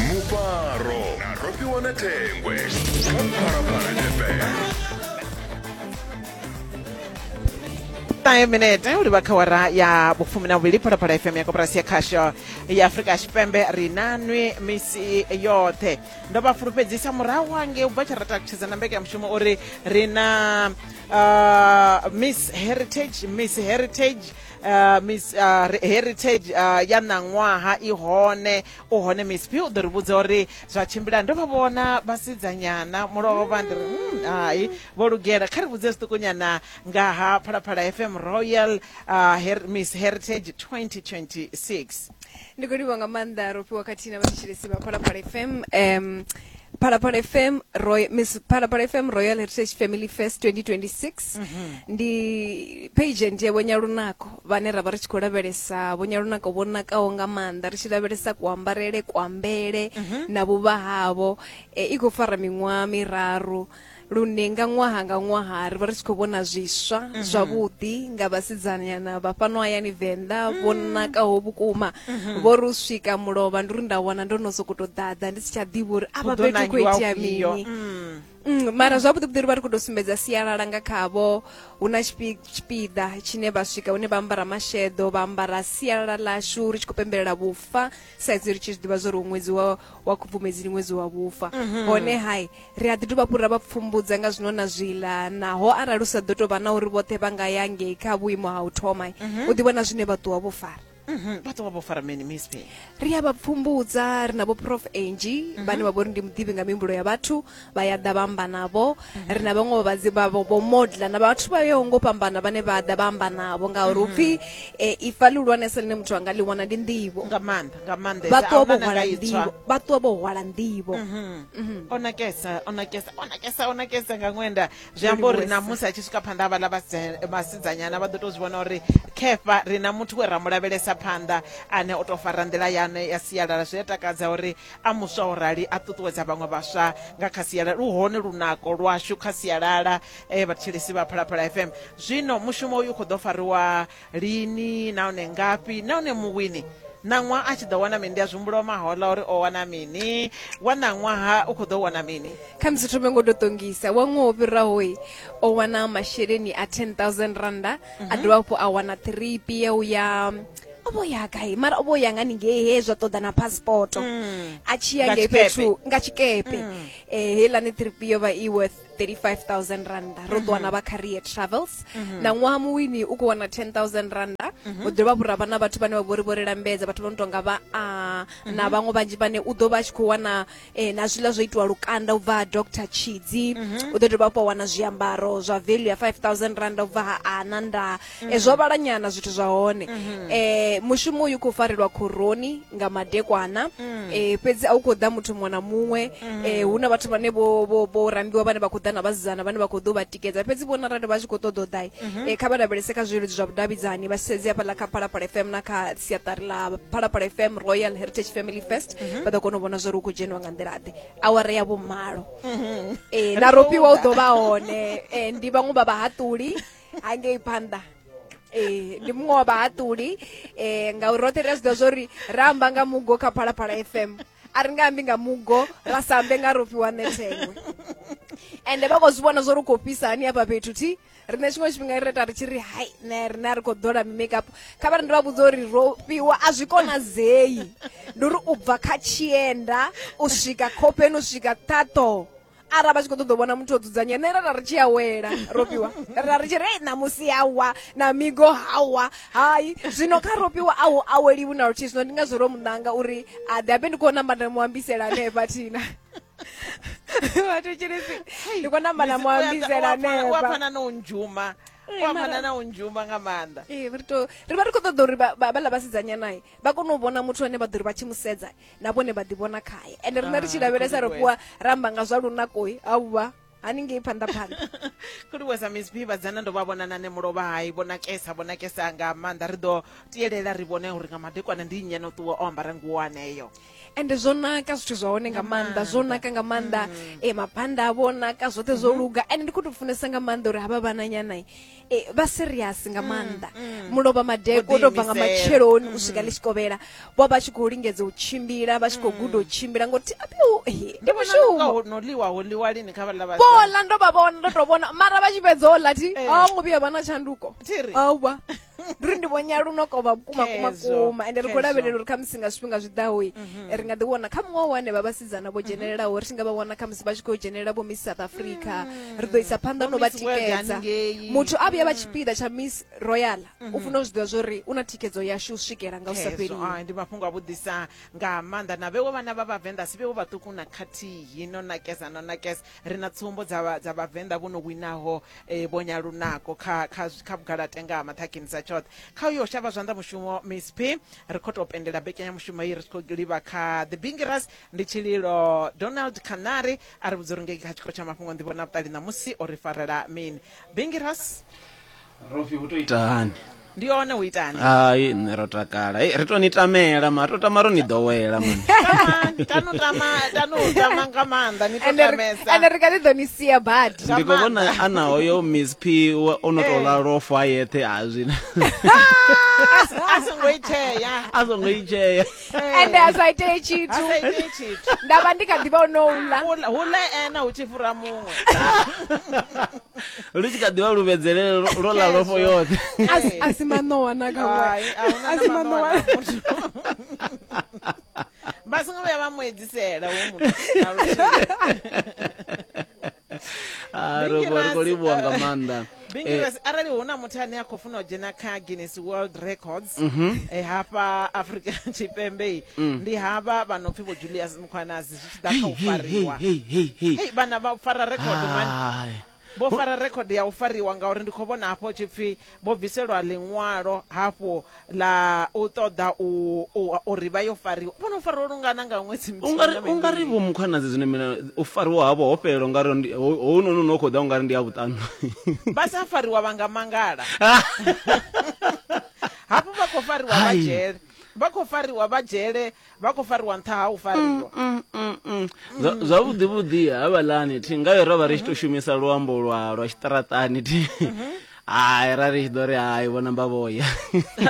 mufaro na rofhiwa na thengwe kha phalaphala fm ṱahe minete u livha kha wara ya vhufumi na vhuvhili phalaphala fm ya koporasi ya khasho ya afurika tshipembe ri na nwi misi yoṱhe ndo vha fulufhedzisa murahu hange u bva tsha ra takutshedza na mbekanyamushumo uri ri na uh, miss heritage miss heritage Uh, miss uh, heritage uh, ya ṋaṅwaha i hone u hone miss p u ḓo ri vhudza uri zwa tshimbila ndo vha vhona vhasidzanyana mulovho vha ndi ri mm, hai vho lugela kha ri vhudze zwiṱukunyana nga ha phalaphala fm royal uh, her, miss heritage 2026 ndi khou livha nga maanḓa ro fhiwa khathihi na vhathetshelesi vha phalaphala fm um phalaphala fm roy miss phalaphala fm royal heritage family fest 2026 ndi page ndiye vho nyalunako vhane ra vha ri tshi khou lavhelesa vho nyalunako vho nakaho nga maanḓa ri tshi lavhelesa kuambarele kuambele na vhuvha havho Eh, i khou fara miṅwaha miraru lune nga ṅwaha nga ṅwaha ri vha ri tshi khou vhona zwiswa mhm. zwavhuḓi nga vhasidzanyana vha fhano hayani venḓa mhm. vho nakaho vhukuma mhm. vho ri u swika mulovha ndi uri nda wana ndo no sokou tou ḓaḓa ndi si tsha ḓivha uri avha fhethu khou itea mini mm. Mm, mara zwavhuḓi vhuḓi ri vha ri khou tou sumbedza sialala nga khavho hu na tshipiḓa tshine vha swika hune vha ambara masheḓo vha ambara sialala ḽashu ri tshi khou pembelela vhufa sa izwi ri tshi zwi ḓivha zwa uri ṅwedzi wa wa khubvumedzi ndi ṅwedzi wa vhufa mhm. hone hai Ri a ḓi dovha hafhu ra vha pfumbudza nga zwino na zwiḽa naho arali u sa ḓo tou vha na uri vhoṱhe vha nga ya ngei kha vhuimo ha u thoma u ḓi vhona zwine vha ṱuwa vho fara Mhm, vha ṱuwa vho fara mini miss Pay? ri a vha pfumbudza ri na vho prof angie vhane vha vha uri ndi muḓivhi nga mihumbulo ya vhathu vha ya ḓa vha amba navho ri na vhaṅwe vhavhadzi vha vho vho modla na vhathu vha yaho ngo fhambana vhane vha ḓa vha amba navho ngauri hu pfi um ifa ḽihulwanesa ḽine muthu a nga ḽi wana ndi nḓivho nga maanḓa nga maanḓa vha ṱuwa vho hwala nḓivho vha ṱuwa vho hwala nḓivho Mhm. o nakesa o nakesa o nakesa o nakesa nga ṅwenda zwi amba uri na musi a tshi swika phanḓa ha vhaḽa vhasidzanyana vha ḓo tou zwi vhona uri khefa ri na muthu we ra mu lavhelesa phanḓa ane o tou fara nḓila yane ya sialala zwi a takadza uri a muswa o rali a ṱuṱuwedza vhaṅwe vhaswa nga kha sialala lu hone lunako lwashu kha sialala eh, vhathetshelesi vha phalaphala fm zwino mushumo uyu khou ḓo fariwa lini nahone ngafhi nahone muwini ṋaṅwaha a tshi ḓo wana mini ndi a zwihumbula wa mahola uri o wana mini wa ṋaṅwaha u khou ḓo wana mini kha musi thome ngo to ṱongisa wa ṅwaha o fhirahoyi o wana masheleni a 10000 randa a dovha hafhu a wana tiripi ya u ya o vho ya gai mara o vho ya nga ningei he zwa ṱoḓa na passport a tshi ya Nga ngei tshikepe. fhethu nga tshikepe eh heiḽani tiripi yo vha i worth 35000 randa ro ḓo wana vha career travels na ṅwaha muwini u khou wana 10000 randa u ḓo vha vhura vha na vhathu vhane vha vhori vho ri lambedza vhathu vho no tonga vha a na vhaṅwe vhanzhi vhane u ḓo vha a tshi khou wana eh, na zwiḽa zwo itiwa lukanda u bva ha dr tshidzi u ḓo dovha hafhu wa wana zwiambaro zwa value ya 5000 randa u bva ha ana nda e, zwo vhala nyana zwithu zwa hone mm-hmm. e, mushumo uyu khou farelwa khoroni nga madekwana mm. e, fhedzi a u khou ḓa muthu muṅwe na muṅwe mm. e, hu na vhathu vhane vho rambiwa vhane vha khou ḓa na vhasidzana vhane vha khou ḓo vha tikedza fhedzi vhona arali vha tshi khou ṱoḓa u ḓai mm-hmm. e, kha vha lavhelese kha zwileludzi zwa vhudavhidzani vha sedze hafhaḽa kha phalaphala fm na kha siaṱari ḽa phalaphala fm royal heritage family fest mm-hmm. vha ḓo kona u vhona zwori u khou dzheniwa nga nḓilaḓe awara ya vhomalo mm-hmm. e, na ropiwa u ḓo vha hone e, ndi vhaṅwe vha vhahaṱuli hangei phanḓa ee ndi muṅwe wa vhahaṱuli um ngauri roṱhe ri a zwi ḓivha zwa uri ra amba nga mugo kha phalaphala fm a ri nga ambi nga mugo ra sa ambe nga ro fhiwa nethengwe ende vha khou zwi vhona zwo ri khou fhisa hani hafha fhethu thi riṋe tshiṅwe tshifhinga ri reta ri tshi ri hai ne riṋe a ri khou ḓola mimakapu kha vha ri ndi vha vhudza uri ro fhiwa a zwi konadzei ndi uri u bva kha tshienda u swika khofheni u swika ṱhaṱho ara vha tshi khou ṱoḓa u vhona muthu o dzudzanya nṋe ra ra ri tshi a wela ropiwa ra ri tshi ri "Ei, ṋamusi hawa na migo hawa hai zwino kha ropiwa a hu aweliwi na luthihi zwino ndi ngazwo ro muṋanga uri a ḓe abe ndi khou namba nda mu ambisela hanefha thina vhathu tshilisi ndi khou namba na mu ambisela hanefha wapfana na u ndzhuma Ee, wapfana mara- na u ndzhuma nga maanḓa Ee, ri to- ri vha ri khou ṱoḓa uri vha- vha- vhaḽa vhasidzanyanae vha kone u vhona muthu ane vha ḓo ri vha tshi mu sedza na vhone vha ḓivhona khaye ende riṋe ri tshi ah, lavhelesa ri fhiwa ra amba nga zwa lunakoi auvha haningei phanḓa phanḓa kuliwesa miss b vhadzana ndo vha vhona nane mulovha hai vho nakesa vho nakesa nga maanḓa ri ḓo tiyelela ri vhone uri nga madekwana ndi nnyi no ṱuwa o ambara nguwo aneyo ende zwo naka zwithu zwa hone nga maanḓa zwo naka nga maanḓa mm. e mabanda a vho naka zwoṱhe zwo mm-hmm. luga ende ndi khou tou funesa nga maanḓa uri havha vhananyana eh, vha serious nga maanḓa mulovha madeko Vho to bva nga ḓiimisela. matsheloni u swika ḽi tshi kovhela vho vha tshi khou lingedza u tshimbila vha tshi khou guda u tshimbila ngoti apiu he, ndi mushumo no ḽiwa ho ḽiwa lini kha vhaḽa vhasidzana? vhola ndo vha vhona ndo to vhona mara vha tshi fhedza ola thi Eh. a ngo vhuya vha na tshanduko Thiri. awa ndi ri ndi vhonya luno kovha vhukuma kuma Khezwo, kuma ende ri khou khezwo. lavhelela uri khamusi nga zwifhinga zwi ḓaho ri nga ḓi wana kha muṅwe wa henevha vha vhasidzana vho dzhenelelaho ri tshi nga vha wana kha musi vha tshi khou dzhenelela vho miss south africa mm. ri ḓo isa phanḓa no vha tikedza muthu a vhuya vha mm. tshipiḓa tsha miss royal u mm-hmm. funa u zwi ḓivha zwori u na thikedzo yashu u swikela nga u sa fheliwe ndi mafhungo a vhuḓisa nga maanḓa na vhewo vhana vha vhavenḓa si vhewo vhaṱuku na khathihi no nakeza no nakeza ri na tsumbo dza vha- dza vhavenḓa vho no winaho eh, vho nyalunako kha kha zwi- kha vhugalate nga ha maṱhakheni sa tshoṱhe kha uyo shavha zwanḓa mushumo miss p ri khou tou pendela mbekanyamushumo iyi ri tshi khou livha kha the bingiras ndi tshililo donald canary a ri vhudza uri ngei kha tshikolo tsha mafhungo nḓivho na vhuṱali ṋamusi o ri farela mini bingiras rofi hu to ita hani ndi one u itani hai nṋe ro takala Hei, ri to ni tamela ma to tama ro ni ḓowela mani tanu tama tanu tama nga maanḓa ni to ende ri- ende tamesa ri kha ḓi ḓo ni sia badi Nga ndi khou vhona maanḓa. ana hoyo miss p wa- o no tou lalofo a yeṱhe a zwina a songo itea a songo i tshea ende a sa itee tshithu hasa ite tshithu nda vha ndi kha ḓivha o no u ḽa Hula- hula ena hu tshi fhura muṅwe lu tshi kha ḓivha lu vhedzelele lo- lo ḽa lofho yoṱhe A si- a si maṋowa na kha ṅwana. Hai, a huna A si na maṋowa maṋowa. na muthu. vha songo vhuya vha mu edzisela hu muthu na luthihi. Ah, Bingi robo ri khou Ras, livhuwa nga eh, maanḓa Eh, Bingiras, arali hu na muthu ane a khou funa u dzhena kha guinness world records Mhm. eh, hafha afrika tshipembe Mm. ndi havha vha no pfi vho julius mukhwanazi zwi tshi ḓa kha u fariwa Hey, vhana vha fara record man Hai. vho fara record ya u fariwa ngauri ndi khou vhona hafho tshipfi vho bviselwa ḽiṅwalo hafhu ḽa u ṱoḓa u- u- uri vha yo fariwa vho no fariwa lungana nga ṅwedzi muthihi na ungari ungari mivhili. vho mukhwanadzi zwino mina u fariwa havho ho fhelela ungari ndi- ho- hounoni une u khou ḓa ungari ndi ya vhuṱanu vha sa fariwa vha nga mangala hafhu vha khou fariwa vha Hai. dzhele vha khou fariwa vha dzhele vha khou fariwa nṱha ha u fariwa mm, mm, mm, Zwa- zwavhuḓi vhuḓi havhalani thi ngayo ro vha ri tshi to shumisa luambo lwa lwa tshiṱaraṱani thi hai ra ri tshi ḓo ri hai vho namba vhoya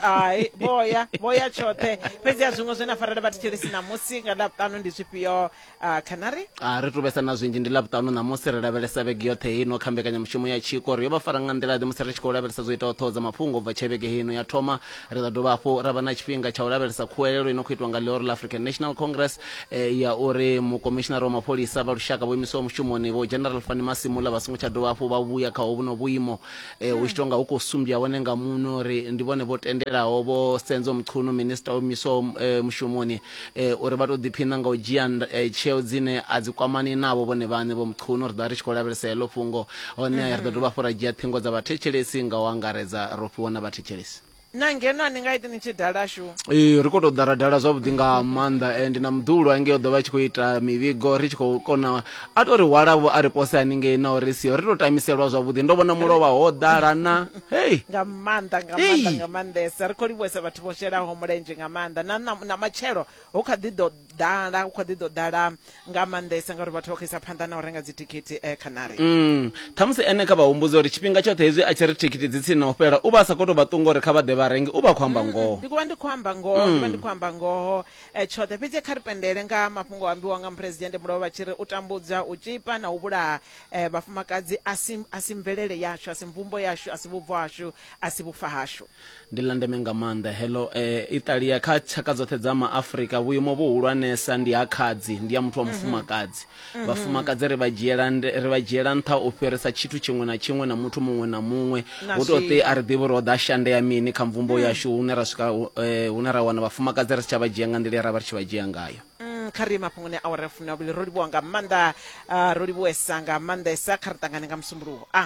hai vhoya vhoya tshoṱhe fhedzi a zwiṅwe zwe na farela vhathethelesi ṋamusi nga ḽavhuṱanu ndi zwifhio Uh, kana ri a ri tu vhesa na zwinzhi ndi ḽa vhuṱanu ṋamusi ri lavhelesa vhege yoṱhe heino kha mbekanyamushumo ya tshiko ri yo vha fara nga nḓila-ḓe musi ri tshi khou lavhelesa zwo itaho ṱhoho dza mafhungo u bva tshe vhege heino ya thoma ri ḓa dovha hafhu ra vha na tshifhinga tsha u lavhelesa khuwelelo i no khou itwa nga ḽihoro ḽa african national congress eh, ya uri mukomishinara wa mapholisa vha lushaka vho imisiwa mushumoni vho general fani masimula vha songo tsha dovha hafhu vha vhuya kha hovhuno vhuimo eh, hu tshi tou nga hu khou sumbya hone nga muno ri ndi vhone vho tendelaho vho senzo mchunu minista o imiswaho eh, mushumoni e, uri vha tou ḓiphiṋa nga u dzhia e, tsheo dzine a dzi kwamani navho vhone vhaṋe vho mqhuno ri ḓo vha ri tshi khou lavhelesa heḽo fhungo hone ri ḓo dovha hafhu ra dzhia ṱhingo dza vhathetshelesi nga u angaredza ro fhiwa na vhathetshelesi na ngeno a ni nga iti ni tshi dala shu ee ri khou tou dara dala zwavhuḓi nga maanḓa and na muḓulu hange o ḓo vha tshi khou ita mivhigo ri tshi khou kona a tou ri hwalavho a ri pose haningei na uri siho ri tou tamiselwa zwavhuḓi ndo vhona mulovha ho ḓala na hei nga maanḓa nga Hey. maanḓa nga maanḓesa ri khou livhuwesa vhathu vho shelaho mulenzhe nga maanḓa na, na, na matshelo hu kha ḓi ḓo ḓala hu kha ḓi ḓo ḓala nga maanḓesa ngauri vhathu vha khou isa phanḓa na u renga dzithikhithi eh, khanari Mm. ṱhamusi ene kha vha humbudze uri tshifhinga tshoṱhe hezwi a tshi ri thikhithi dzi tsini na u fhela u vha a sa khou tou vha ṱunga uri kha vha ḓe vha renge u vha a khou amba ngoho ndi kuvha ndi khou amba ngoho ndi vha ndi khou amba ngoho eh, tshoṱhe fhedzi kha ri pendele nga mafhungo a ambiwa nga muphuresidennde mulova vha tshi ri u tambudza u tshipa na u vhulaha Vhafumakadzi a si, a si mvelele yashu, a si mvumbo yashu, a si vhubvo hashu, a si vhufa hashu. Ndi ḽa ndeme nga maanḓa heḽo. I ṱalia kha tshaka dzoṱhe dza Maafrika. Vhuimo vhuhulwanesa ndi ha khadzi, ndi ha muthu wa mufumakadzi. Vhafumakadzi ri vha dzhiela, ri vha dzhiela nṱha u fhirisa tshithu tshiṅwe na tshiṅwe na muthu muṅwe na muṅwe. Hu tou pfi a ri ḓivhi uri ho ḓa shande ya mini kha mvumbo yashu hune ra swika hune ra wana vhafumakadzi ri si tsha vha dzhia nga nḓila ye ra vha ri tshi vha dzhia ngayo. Mm, kha ri mafhungoni a awara ya fumi na vhuvhili ro livhuwa nga maanḓa ah, ro livhuwesa nga maanḓesa kha ri ṱangane nga musumbuluwo a